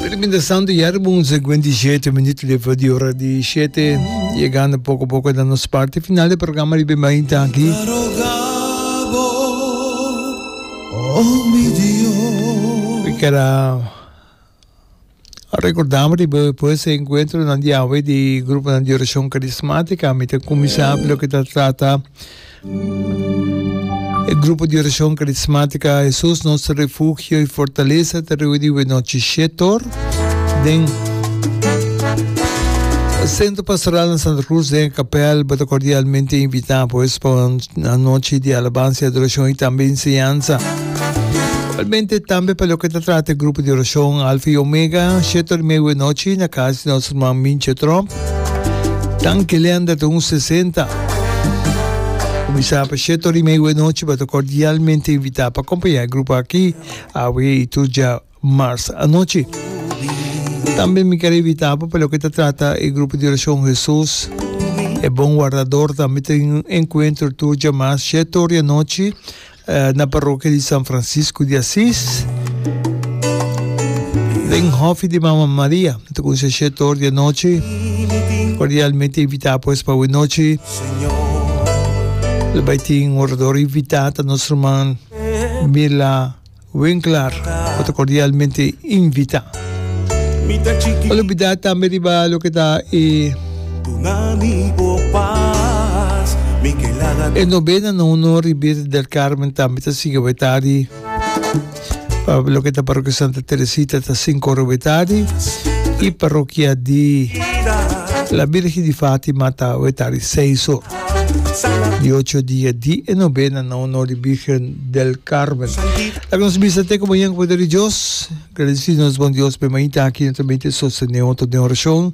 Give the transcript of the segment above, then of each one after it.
Piriminta santu yari bun segwenti shete minutu lefa di ora di shete yegando poko poko na nos parti final di programa riba mainta aki We kera recordamos riba pues encuentro nan di awe di grupo nan di oracion carismática mi te kumisa lo que ta trata E grupo di oracion carismática Jesús nos refugio y fortaleza ta riba di Wenochiche Tor den Centro Pastoral na Santa Cruz den e capel. Bo ta cordialmente invita pues pa un anochi di alabanza y adoracion y tambe enseñanza. Igualmente tambe pa loke ta trata e grupo di oracion Alfa y Omega Shetor Mei Wenochi na cas di nos herman Minche Trump. Danki Leander ta un sesenta. Kuminsá pa shete ora i meiu e nochi, bo ta kordialmente invitá pa kompañá e grupo akí awe i tur dja mars anochi. Tambe mi ker invitá bo pa loke ta trata e grupo di orashon Hesus e bon wardador. Tambe tin un enkuentro tur dja mars shete ora i anochi. na parrokia di San Francisco di Asis, den hofi di Mama Maria, ta con sa siete or di anochi, cordialmente invita pues pa awe nochi, lo bay tin un orador invita ta nos herman Mila Winkler, cu ta cordialmente invita. No olbida tambe riba loke ta e. Duna mi bo pas, mi ke laga. E Novena no uno Ribir del Carmen tambe ta sigui bai tardi. Pa loke ta Parokia Santa Teresita ta sinku ora bai tardi i Parokia di La Birgi di Fatima ta bai tardi seis ora. Di ocho dia di e Novena na uno di Birgen del Carmen. Laga nos bisa te como yen poder di Dios. Gradeci nos bon Dios pe mainta aki no ta miti sostene otro den oracion.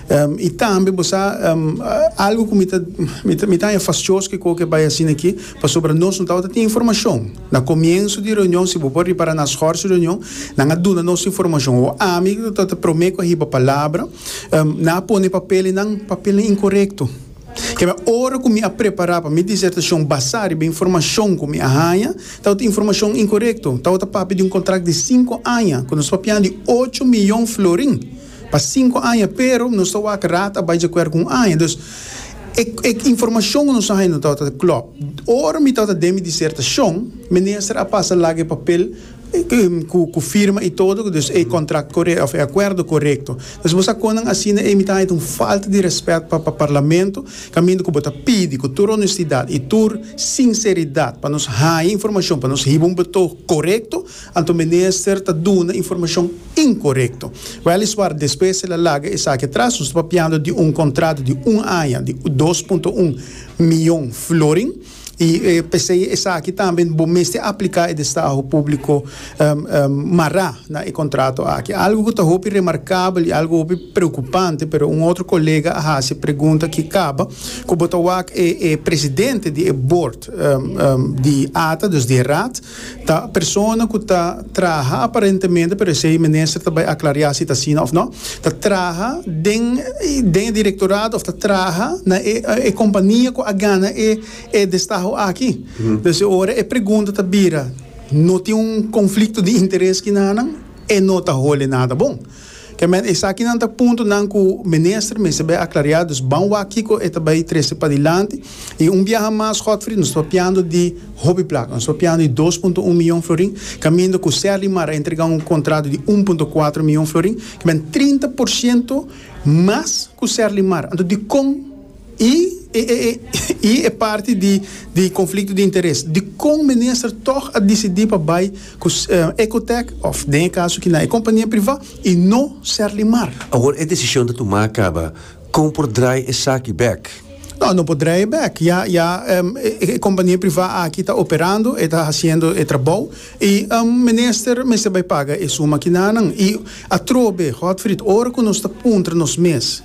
I tambe bo sa algu ku mi ta mi ta haña fashos ku eko ke bai asina aki pasobra nos no tabata tin informashon. Na komienso di reunion si bo por ripara na shors reunion nan a duna nos informashon o ami ku ta ta prome ku a hiba palabra nan a pone papelnan papelnan inkorekto. Kema ora ku mi a prepara pa mi disertashon basa riba informashon ku mi a haña tabata informashon inkorekto tabata papia di un kontrakt di sinku aña ku nos papian di ocho miyon florin. Pa sinku aña, pero nos ta wak rat a bai djakuerdo ku un aña. Dus, e e informashon ku nos a haña no tabata ta klòp. Ora mi tabata den mi disertashon, minister a pasa laga e papel ku ku firma i todo, dus e kontrakt korekto òf e akuerdo korekto. Dus bo sa kon nan asina ei mi ta haña ta un falta di rèspèt pa pa parlamento, kaminda ku bo ta pidi ku tur onestidat i tur sinseridat pa nos haña informashon pa nos hiba un betog korekto, Anto minister ta duna informashon inkorekto. Weliswar despues el a laga esaki atras. Nos ta papiando di un kontrato di un aña di dos punto un miyon florin i p'esei esaki tambe bo mester apliká e destaho públiko mará na e kontrato aki. Algu ku ta hopi remarkabel i algu hopi preokupante pero un otro kolega a hasi e pregunta ki kaba ku bo ta wak e presidente di e bord di ata, dus di e raad, Ta persona ku ta traha aparentemente, pero esei minister ta bai aklariá si ta asina òf nò, ta traha den den e direktorato òf ta traha na e e kompania ku a gana e e destaho aki. Pues e ora e pregunta ta bira, no tin un konflikto di interes kina nan? E no ta hole nada bon. Kèmen, esakinan ta puntonan ku mester mester bai aklariá, dus ban wak kiko e ta bai trese padilanti. I un biaha mas, Godfrey, nos ta papiando di hopi plata, nos ta papiando di dos punto un miyon florin, kaminda ku Serly Mar a entregá un kontrato di un punto kuater miyon florin, kèmen trinta por siento mas ku Serly Mar. Anto dikon? I i e parti di di conflicto di interes dicon minister toch a dicidi pa bay cu Ecotech of den e caso aki na e compania priva y no ser limar. Awor e decision ta tuma caba con por draai esaki bek? No, no por draai bek. Ya ya e compania priva aki ta operando, e ta haciendo e trabao y minister mester bay paga e suma aki nanan. Y atrobe, Godfried, ora cu nos ta puntra nos mes.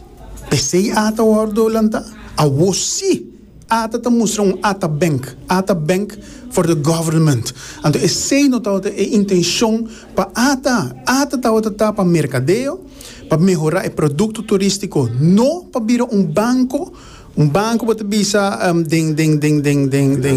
P'esei ata wòrdu lantá? Awó sí, ata ta mustra un ata bènk, ata bènk for the government. Anto esei no tabata e intenshon pa ata, ata tabata ta pa merkadeo, pa mehorá e produkto turístiko, no pa bira un banko, un banko bo ta bisa den, den, den, den, den, den.